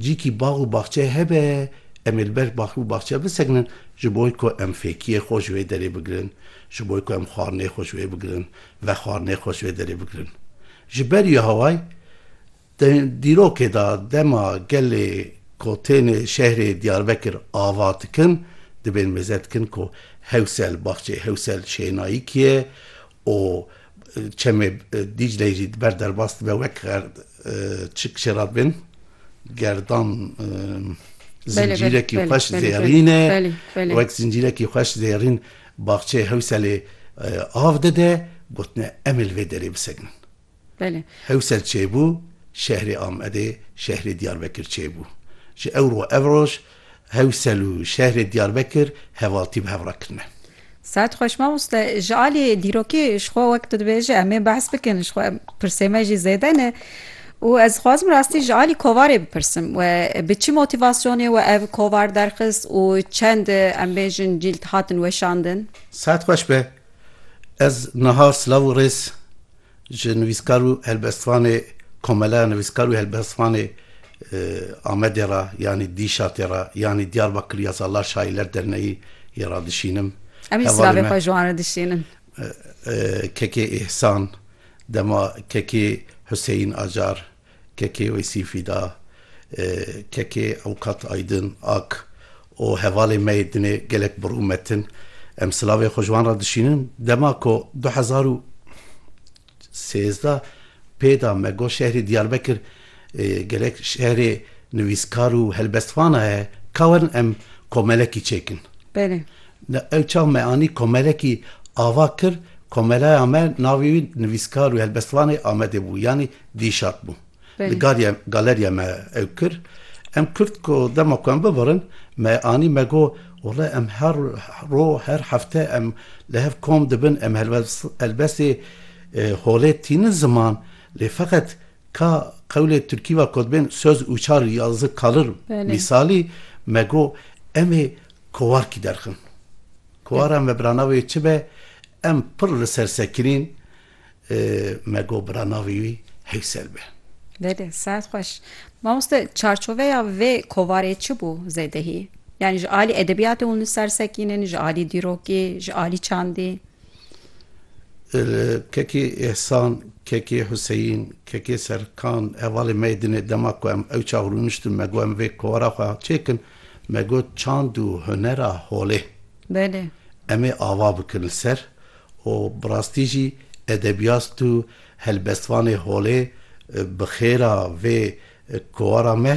Cîkî bax û baxçe hebe, em ê li ber bax û baxçe bisekinin, ji bo ku em fêkiyê xwe ji wê derê bigirin, ji bo ku em xwarinê xwe ji wê bigirin, vexwarinê xwe ji wê derê bigirin. Ji ber Yehowayê, di dîrokê de dema gelê ku tên şehrê Diyarbekir ava dikin, dibên mêze dikin ku Hewsel, baxçeyê Hewsel şênayî kî ye û çemê Dîcleyê jî di ber derbas dibe wek xer çik çê re bin gerdan zincîrekî xweş zêrîn e wek zincîrekî xweş zêrîn baxçeyê Hewselê av dide gotine em ê li vê derê bisekinin. Belê. Hewsel çêbû şehrê Amedê şehrê Diyarbekir çêbû. Ji ew ro ev roj Hewsel û şehrê Diyarbekir hevaltî bi hev re kirine. Saet xweş mamoste. Ji alî dîrokî ji xwe wek tu dibêjî em ê behs bikin ji xwe pirsê me jî zêde ne û ez dixwazim rastî ji alî kovarê bipirsim we bi çi motivasyonê we ev kovar derxist û çend em bêjin cîld hatin weşandin? Saet xweş be. Ez niha silav û rêz. Ji nivîskar û helbestvanê Komeleya Nivîskar û Helbestvanê Amedê re yanî Dîşatê re yanî Diyarbakir ya Salar Şaîler Derneyî yê re dişînim. Em jî silavê xwe ji wan re dişînin. Kekê Îhsan, dema Kekê Huseyîn Acar, Kekê Weysî Fîda, Kekê Ewqat Aydin Ak û hevalên me yê dinê gelek bir û metin. Em silavê xwe ji wan re dişînin. Dema ku du hezar û sêzdeh pê da me got şehrê Diyarbekir gelek şehrê nivîskar û helbestvanan heye, ka werin em komelekî çêkin. Belê. Ew çav me anî komelekî ava kir, komelaya me navê wî nivîskar û helbestvanê Amedê bû. Yanî Dî şat bû. Li galiya galeriya me ew kir. Em kurd ku dema ku em bibirin me anî me got wallay em her roj her hefte em li hev kom dibin em helbestê holê tînin ziman lê feqet ka qewlê tirkî ve ku dibên soz û çar û yazdeh kalir mîsalî me got em ê kowarkî derxin. Kowara me bi ra navê çi be em pir li ser sekinîn. Me got bira navê wî Heysel be. Belê, saet xweş. Mamoste çarçoveya vê kovarê çi bû zêdehî? Yanî ji alî edebiyatê hûn li ser sekînin, ji alî dîrokî, ji alî çandî? Kekê Ehsan, kekê Huseyîn, kekê Serkan hevalê me yê dinê dema ku em ewça rûniştin me got em vê kovara xwe çêkin, me got çand û hunera holê. Belê. Em ê ava bikin li ser û bi rastî jî edebiyast û helbestvanê holê bi xêra vê kovara me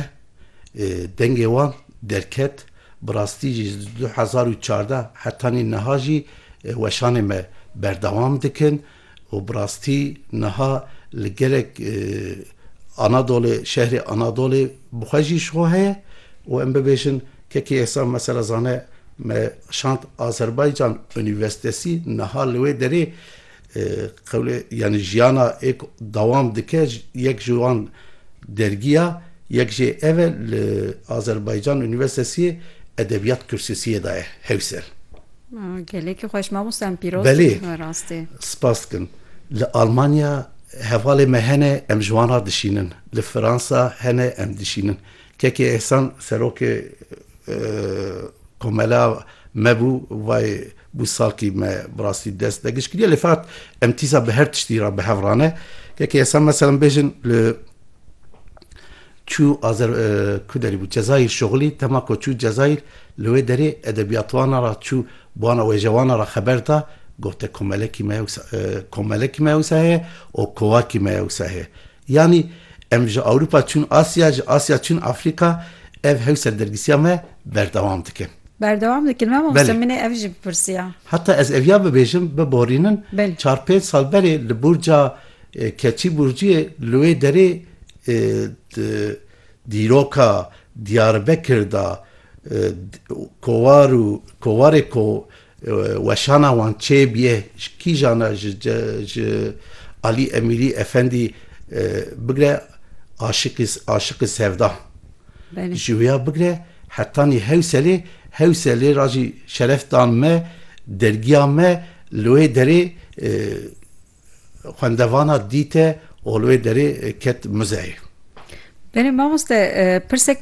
dengê wan derket, bi rastî jî ji du hezar û çardeh hetanî niha jî weşanê me berdewam dikin û bi rastî niha li gelek Anadolê şehrê Anadolê bi xwe jî ji xwe heye û em bibêjin kekê êsan mesela zane me Şant Azerbaycan Unîvesitesî niha li wê derê qewlê yanî jiyana êk dewam dike. Yek ji wan dergiya, yek jê ev e li Azerbaycan Unîvesitesî Edebiyat Kürsisiyê de ye Hewser. Gelekî xweş mamosta em pîroz Belê. dibin rastî. Spas dikim. Li Almanya hevalê me hene em ji wan re dişînin. Li Fransa hene em dişînin. Kekê Ehsan serokê Komela me bû vay bû salkî me bi rastî dest degiş kiriye lê fat em tîsa bi her tiştî re bi hev rane yekê esa meselem bêjin li çû azer ku derî bû Cezayîr şoxilî tema ku çû Cezayîr li wê derê edebiyatwana ra çû bana wêjewana ra xeber da gote komelekî me komelekî me wisa heye û kovakî me wisa heye Yanî em ji Ewropa çûn Asya, ji Asya çûn Afrika, ev hewsa dergîsiya me berdewam dikin. Berdewam dikin mamoste min ê ev jî bipirsiya. Heta ez eviya bibêjim, biborînin, çar pênc sal berê li Burca Keçî Burciyê li wê derê di dîroka Diyarbekir de kovaro kovarê ko Weşana wan çê bîyê ji kîjan e ji Alî Emîrî Efendî bigre aşiqî aşiqî sevda ji wîya bigre hetanî Hewselê Hewselê ra jî şeref da me dergîya me li wê derê xwendevana dîte û li wê derê ket muzeyê. Belê mamoste pirsek